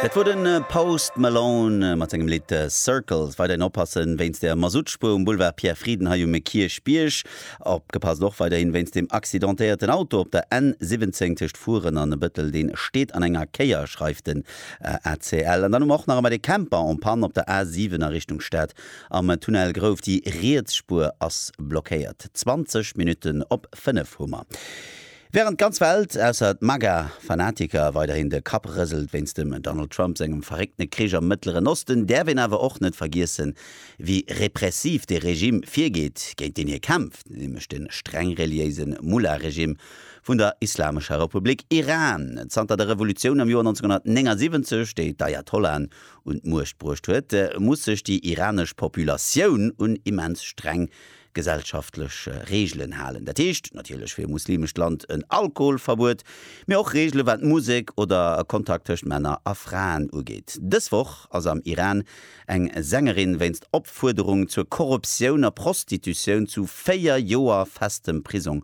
Dat wor de Post Malone mat sengem Lidd Circles. Weiderhin oppassen wéinst der Masuttspuer um Boulevard Pierre Frieden hei um Kierchbierg. Opgepasst och weiderhin wéinst dem accidentéierten Auto op der N 17 tëscht Furen an Bëttel. Deen steet an enger Kéier, schreift den ACL. An dann hu mer och nach emmer de Camper en panne op der A 7 a Richtung Stad am Tunnel Grouf. Déi riets Spuer ass blockéiert. 20 Minutten op 5 hu mer. Wärend d'ganz Welt, ausser d'MAGA-Fanatiker, weiderhin de Kapp rëselt wéinst dem Donald Trump sengem verréckte Krich am Mëttleren Osten, däerf een awer och net vergiessen, wéi repressiv dee Regime virgeet, géint deen hie kämpft, nämlech de streng reliéise Mullah-Regime vun der Islamescher Republik Iran. Zanter der Revolutioun am Joer 1979, déi d'Ayatollahen un d'Muecht bruecht huet, muss sech déi iranesch Populatioun un immens streng Gesellschaftlech Reegelen halen, dat heescht natierlech fir e muslimescht Land en Alkoholverbuet, mee och Reegele wat Musek oder Kontakt tëscht Männer a Fraen ugeet. Dës Woch ass am Iran eng Sängerin wéinst Opfuerderung zur Korruptioun a Prostitutioun zu 4 Joer festem Prisong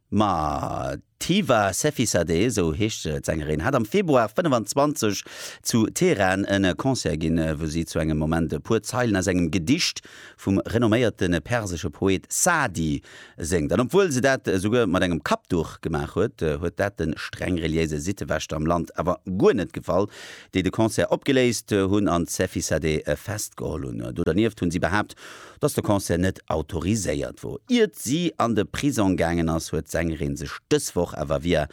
Ma d'Hiva Sefizadeh, esou heescht d'Sängerin, hat am Februar 25 zu Teheran e Concert ginn, wou si zu engem Moment e puer Zeilen aus engem Gedicht vum renomméierte persesche Poet Sa'di séngt. An obwuel se dat esouguer mat engem Kappduch gemaach huet, huet dat de streng reliéise Sittewächter am Land awer guer net gefall, déi de Concert opgeléist hunn an d'Sefizadeh festgeholl hunn. Do dernieft hunn si behaapt, Dass de Concert net autoriséiert wor, iert si an de Prisong gaangen ass, huet d'Sängerin sech dës Woch awer via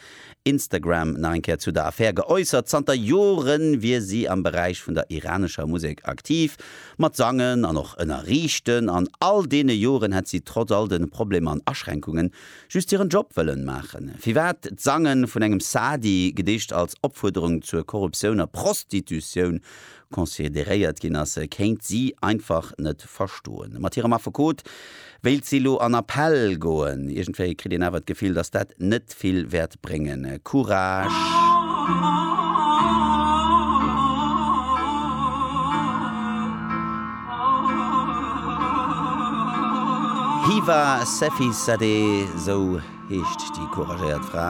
Instagram nach eng Kéier zu der Affär geäussert. Zanter Jore wier si am Beräich vun der iranescher Musek aktiv, mat sangen an och ënnerriichten. An all deene Joren hätt si trotz all de Problemer an Aschränkungen just hiren Job wëllen maachen. Firwat d'Sange vun engem Saadi, gedeecht als Opfuerderung zur Korruptioun a Prostitutioun, consideréiert ginn ass, kéint si einfach net verstoen. Mat hirem Affekot wéilt si elo an Appell goen. Iergendwéi kritt een awer d'Gefill, datt dat net vill wäert bréngen. Courage! Hiva Sefizadeh, esou heescht déi couragéiert Fra.